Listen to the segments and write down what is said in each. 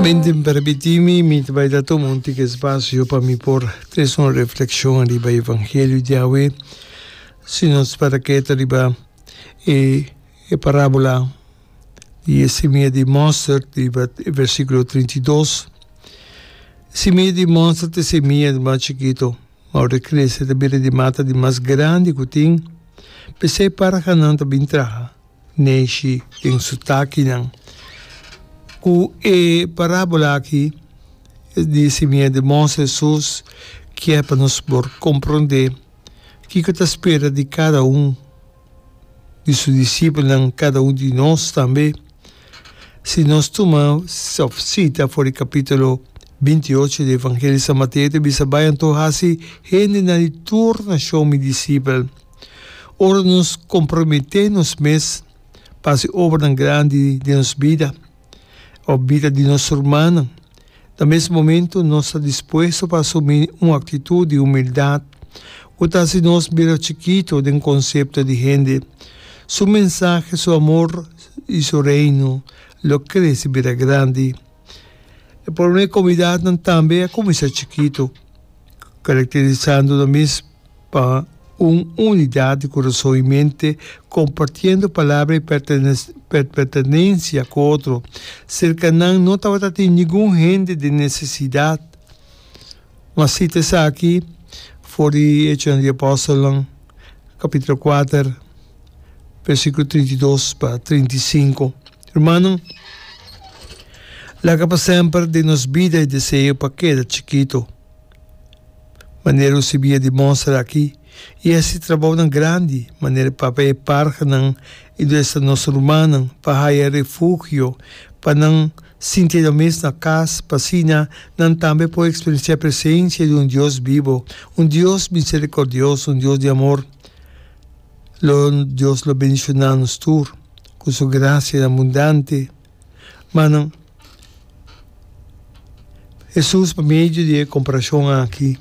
Binding Permití mi, mi ta bai ta tuma un tiki spasio pa mi por trese un reflekshon riba e evangelio di awe, si nos para keda riba e e parábola di e simia di mòsterd riba e versíkulo trinta i dos. Simia di mòsterd ta e simia di mas chikitu, ma ora e krese ta bira di mata di mas grandi ku tin, p'esei parhanan ta bin traha. Neshi den su takinan. Ku e parábola aki di simiente di mos, Hesus kier pa nos por komprondé kiko ta spera di kada un di su disipelnan, kada un di nos tambe. Si nos tuma sita for di kapítulo binti ocho di Evangelio di San Mateo, ta bisa, Bai anto hasi hendenan di tur nashon mi disipel. Ora nos komprometé nos mes pa hasi obranan grandi den nos bida òf bida di nos rumannan, na mes momentu nos ta dispuesto pa asumí un aktitut di humildat ku ta hasi nos mira chikitu den konsepto di hende. Su mensahe, su amor i su Reino lo krese bira grandi. Por una e comunidadnan tambe a cuminsa chikito, caracterisando nan mes pa un unidad di curason i mente, compartiendo palabra i pertenencia cu otro. Cerca nan no tabata tin ningun hende den necesidad. Mas cita esaki for di Hechosnan di Apostolnan. kapitulo kuater bersikulo trinta i dos pa trinta i sinku. Rumannan, laga pa semper den nos bida e deseo pa keda chikitu. Manera ku si bia di mostra aki, i es e trabounan grandi manera papia e parhanan i duesanos rumannan pa haya refugio pa nan Sintié nan mes na kas, p'asina nan tambe por eksperensiá presensia di un Dios bibo, un Dios miserikòrdioso, un Dios di amor. Lo Dios lo bendishoná nos tur ku Su grasianan abundante. Ma nan Hesus pa medio di e komparashon aki.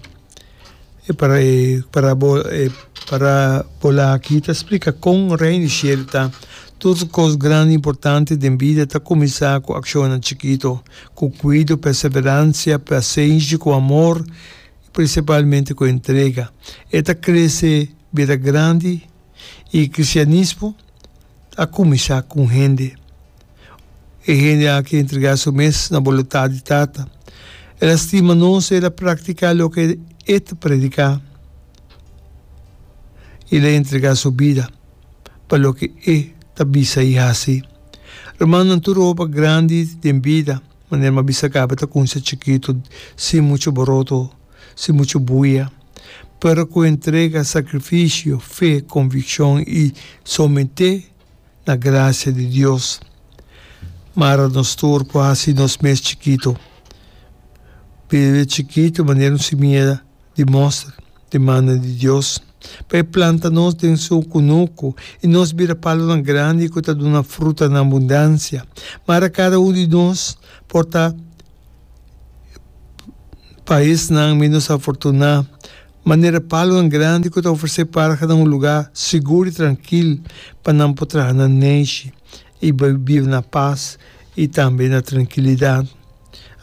E para e parabol e parabola aki ta splika kon Reino di Shelu ta, Tur kos grandi i importante den bida ta kuminsá ku akshonnan chikitu, ku kuido, perseveransha, pasenshi, ku amor i prinsipalmente ku entrega. E ta krese bira grandi i kristianismo a kuminsá ku un hende. E hende aki a entrega su mes na bolutat di Tata. El a stima nos, el a praktiká loke e ta prediká i el a entrega su bida pa loke e ta bisa i hasi. Rumannan tur hopi a grandi den bida, manera m'a bisa kaba ta kunsha chikitu sin muchu boroto, sin muchu buya, pero ku entrega, sakrifisio, fe, konvikshon i someté na gracia di Dios. Mara nos tur por haci nos mes chikito. Bebe chikito manera un simieda di moster di mannan di Dios. Pa e planta nos den su cunucu y nos bira palonan grandi cu ta duna fruta na abundancia. Mara cada un di nos por ta pa esnan menos afortuna. Manera palunan grandi ku ta ofresé parha na un lugá sigur i trankil pa nan por traha na neishi i biba na pas i tambe na trankilidat.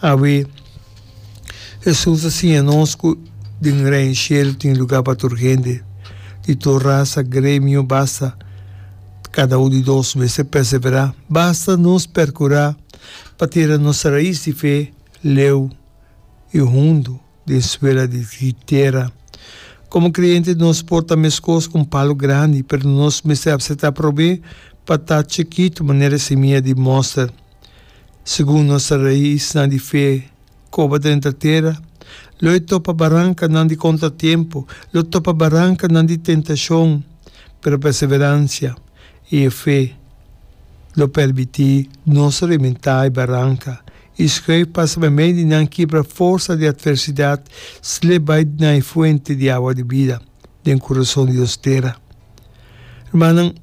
Awe, Hesus a siña nos ku den Reino Shelu tin lugá pa tur hende, di tur rasa, gremio, basta kada un di nos mester perseverá, basta nos perkurá pa tira nos rais di fe leu i hundu. di Escuela di Tierra. Como creyente nos por ta mescos cu un palo grandi, pero nos mester acepta probe pa ta chikito manera e semilla di moster. Segun nos ta raisnan di fe coba drenta tera, lo e topa barancanan di contratiempo, lo topa barancanan di tentacion, pero perseverancia y e fe lo permiti nos rementa e baranca I skreif pasa pa mei di nan kibra forsa di atversidat sle bai na e fuente di awa di bida den kurason di nos tera. Rumannan,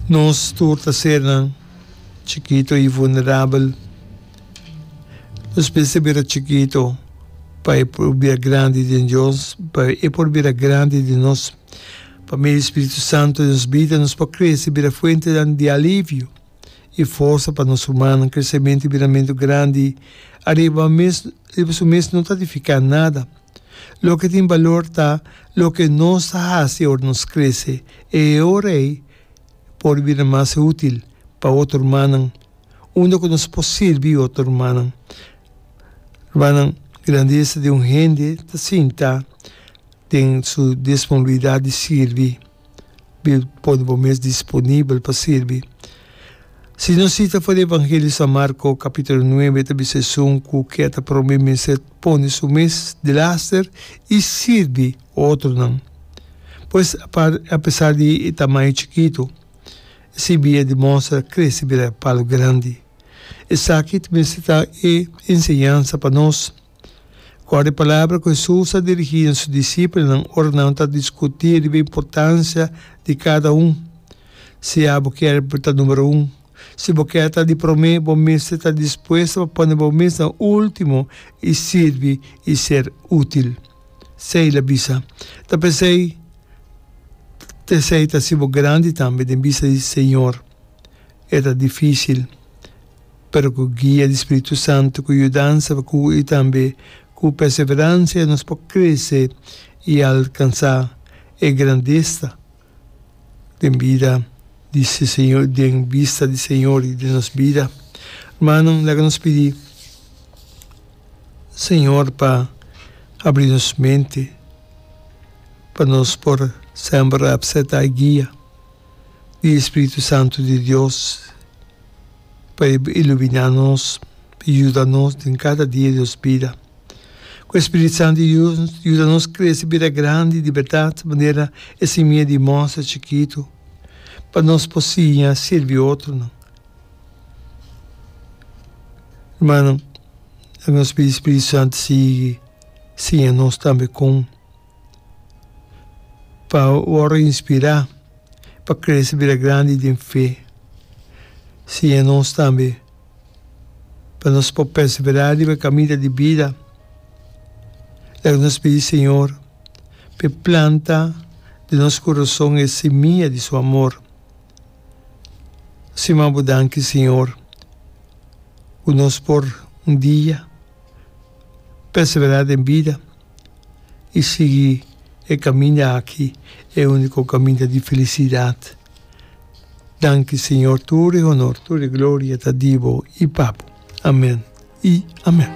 nos tur ta sernan chikito i vulnerabel. Nos mester bira chikito pa e por bira grandi den Dios, pa e por bira grandi den nos. Pa medio di Spiritu Santu den nos bida nos por crece y bira fuentenan di alivio y forsa pa nos rumannan. Crecemento y biramento grandi ariba riba su mes no ta edifica nada. Loke tin balor ta loke nos ta haci ora nos crece. E ora ey por bira mas util pa otro rumannan unda cu nos por sirbi otro rumannan. Rumannan, grandeza di un hende ta sinta. Den su disponibilidat di sirbi, mi pone bo mes disponibel pa sirbi. Si nos sita for di Evangelio San Marco, capitulo nuebe, ta bisa esun cu ke a ta prome mester pone su mes di laster y sirbi otronan. Pues, apesar di e tamaño chikito, e sirbi a demonstra crece bira palu grandi. Esaki ta mester ta e enseñansa pa nos. Kòrda e palabra ku Hesus a dirigí na su disipelnan ora nan ta diskutí riba importansia di kada un, Si abo kere pa ta numero un, si bo kere ta di promé, bo mester ta dispuesto pa pone bo mes na último i sirbi i ser útil. Esei el a bisa. Ta p'esei, esei ta hasibo grandi tambe den bista di Señor. E ta difísil. pero ku guia di Spiritu Santu ku yudansa pa ku i tambe ku perseveransia nos por krese i alkansá e grandesa den bida di si Señor, den bista di Señor i den nos bida. Rmananan, laga nos pidi Señor pa abri nos mente pa nos por semper apseptá e guia. di e Spiritu Santu di Dios pa e iluminá nos, pa e yuda nos den kada dia di nos bida. Ku e Spiritu Santu di Dios yuda nos krese bira grandi di bèrdat manera e simia di mòster chikitu, pa nos por siña sirbi otronan. Rumannan, nos pidi e Spiritu Santu sigui siña nos tambe kon. pa wòrdu inspirá, pa krese bira grandi den fe. Siña nos tambe pa nos por perseverá riba e kaminda di bida. Laga nos pidi Señor pa e planta den nos kurason e simia di su amor. Siman bo danki, Señor, ku nos por un dia perseverá den bida. i sigui e kaminda aki e úniko kaminda di filisidat. Danki Señor, tur e honor, tur e gloria ta di bo i pa bo. Amèn i amèn.